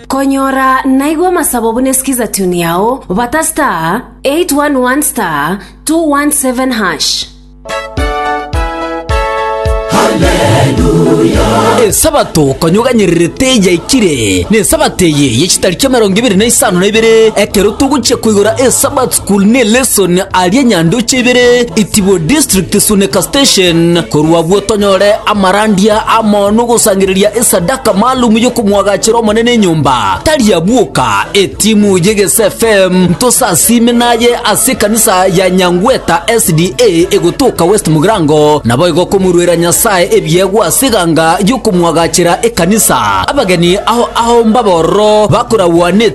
Konyora naigwe amasabo buna esikiza tune yao bata *811*217#. Esabato konyoganyererete yaikire, nesabato eye ye chitariki emerongo ebere na isano na ibere, ekero togochia koigora Esabato. Kulne lesson aria nyandoche ibere itibu district suneka station korwa abwo tonyore amarandia amono gosangereria esadaka maalum yokomwagachera omonene enyomba tari abwoka etimu ye gese fm ntosasime naye ase ekanisa ya nyangweta sda egotoka west mugirango naboigo komorwera nyasaye ebiegwa ase eganga yokomwagachera ekanisa abageni ao ao mbabororo bakoragwa ne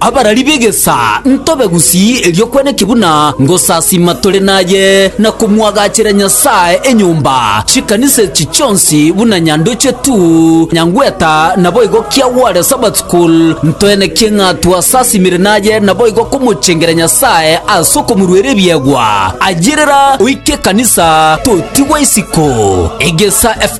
Abarari b'egesaa ntobe gusii erio kweneki buna ngosasima tore naye, na komwagachera Nyasae enyomba, chikanisa echi chionsi buna nyandoche tu, nyangweta, naboigo kia gware Sabbath school, ntoenekie ng'a twasasimire naye naboigo komochengera Nyasae ase okomoruera ebiegwa. Ayerera oike ekanisa totigwa isiko. Egesa F.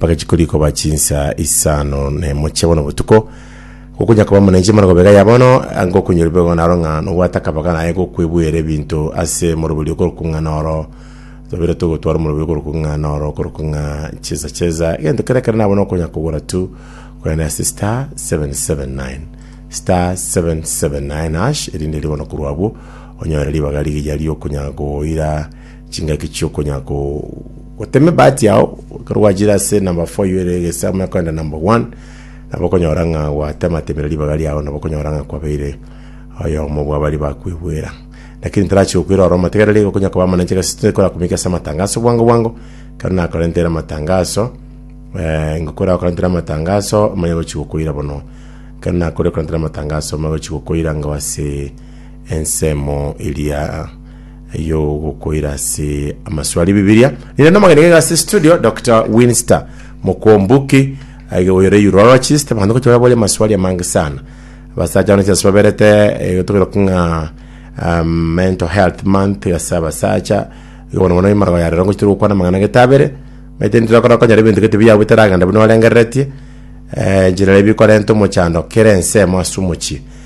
Bagachia koria koba chinsa isano na emochie bono botuko, gokonya koba muna inche mara gobe iga ya bono, ngokonya rube igo naro ng'a nobwate akabaga naye gokwebuera ebinto ase morobori okorokwa ng'a noro tobire togotwara omorobori okorokwa ng'a noro okorokwa ng'a chesa chesa, egento kere ekero nabona okonya kogora tu, kogenda ase star seven seven nine star seven seven nine hash erinde riire bono korwa abwo onyore ribaga rigiya riokonya goira. chingaki chiokonya gotema ebahati yao ekero gwachire ase number 4 you ere egesa omanye koenda number 1 nabo okonyora ng'a gwatematemire ribaga riao nabo okonyora ng'a kwabeire oyomo bwa bari bakwebwera lakini tarachi gokwera ore omote kerere okonya koba amanenche egasi tekora komika ase amatangaso bwango bwango ekero nakorentere amatangaso eh, ngokora okorentere amatangaso omanye gochi gokoira bono ekero nakore okorentere amatangaso omanye gochi gokoira ngao ase ensemo eria eyogokoira ase amaswali bibilia ninde nomogeni gaiga ase studio dr winster mokombuki aige oyore urologist abanto gocha baboria amaswali amange sana abasacha bane chase baberete eh, tokeroka ng'a um, mental health month ase abasacha igo bono bono emarago yarero ngochi tore gokwana amang'ana gete abere maite ntire korokonyora ebinto gete biyago bitaragenda buna orengereretie eh, njirara ebikorenta omochando kera ensemo ase omochie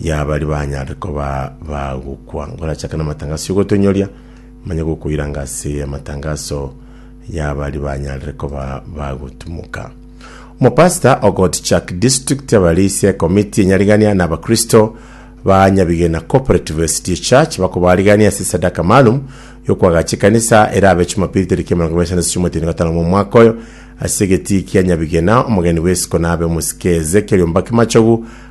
ya baria banyare koba bagokwa. Ngorachake namatangaso yogotonyoria, manye gokoiranga ase amatangaso ya baria banyare koba bagotumoka. Omopasita ogotichak district abarisia ekomiti enyarigania na abakristo ba Nyabigena Cooperative SDA Church bakobarigania ase esadaka maalum yokwagacha ekanisa erabe Jumapili tariki emerongo ebere na chiomo eteni gatano mwa omwaka oyo ase egetii kia Nyabigena omogeni bw'esiko nabe omosike Ezekiel Ombaki Machogu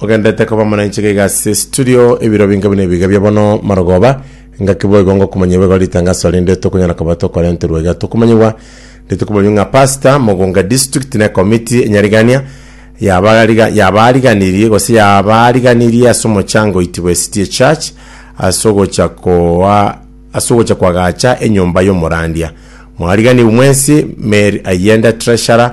ogendete koba muna inchiko iga ase studio ebiro binge buna ebiga bia bono marogoba ngaki boigo ngokumanyia boigo ritangaso rinde tokonyara koba tokorenterwa iga tokomanyigwa rituko boyio ng'a pastor mogonga district ne committee enyarigania yabariga yabariganirie gose yabariganirie ase omochango oitibwa city church ase ogocha koa ase ogocha koagacha enyomba y'omorandia mwariganiwe mwensi mary ayende treasurer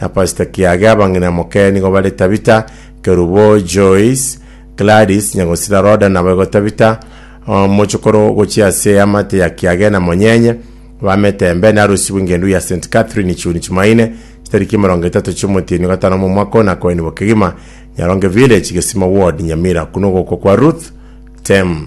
na Pastor Kiage abang'ina moke nigo bare Tabitha, Kerubo, Joyce, Gladys, Nyagosira Rhoda nabo igo Tabitha, uh, mochokoro gochia ase amate ya Kiage na Monyenye, bamete embe na arusi bw'engendu ya St. Catherine June Jumaine, chitariki emerongo etato chi'omotienyi o gatano omo omwaka one akoenigwa kegima Nyaronge Village, Gesimo Ward, Nyamira, kune ogokwa kwa Ruth Tem.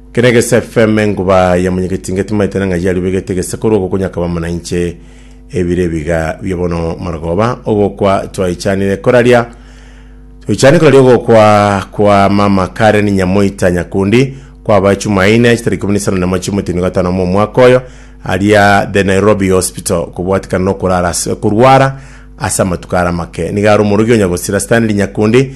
Kera egese FM enguba ya monyegetinga etimaete na ng'ai yario begete egese korwa ogo konyakaba mana inche ebire ebiga bia bono marogoba ogokwa twaichanire koraria toichani koraria ogokwa kwa mama Karen Nyamoita Nyakundi kwabae Chumaine chitari ikumi na isano na emo chi'omotemi o gatano mwa omwaka oyo aria The Nairobi Hospital kobwatikana nokorara ase korwara ase amatuko are amake nigo are omorogi o Nyagosira Stanley Nyakundi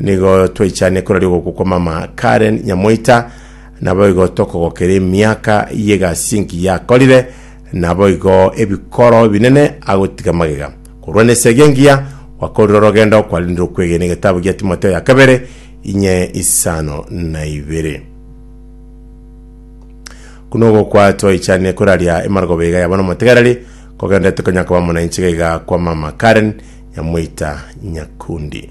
Nigo twaichane korari ogokwa kwa mama Karen Nyamoita, naboigo tokogokera emiaka y'egasi engiya yakorire, naboigo ebikoro ebinene agotiga magega. Korwa nesegi engiya gwakorire orogendo kwarendire okwegena egetabu gia Timotheo ya kabere inye isano na ibere. Kuna ogokwa twaichane koraria emaragoba iga yaba nomotegereri, kogenderete konya koba amo nainche gaiga kwa mama Karen Nyamoita Nyakundi.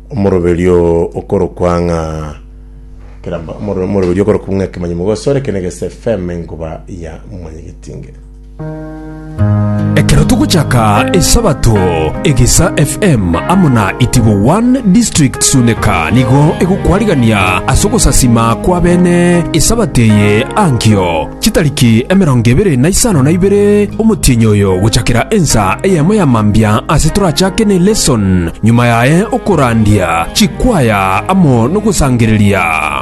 Omoroberio okorokwa ng'a keramba omoro- omoroberio okorokwa ng'a ekemanyi mogosore eke negese FM enkuba ya mwanyegetinge. Ekero togochaka Esabato, Egesa FM amo na Itibo One District Suneka nigo egokwarigania ase ogosasima kw'abene Esabato eye ankio. Chitariki emerongo ebere na isano na ibere omotienyi oyo gochakera ensa eyemo ya mambia ase torachake ne lesson, nyuma yaye okorandia chikwaya amo nogosangereria.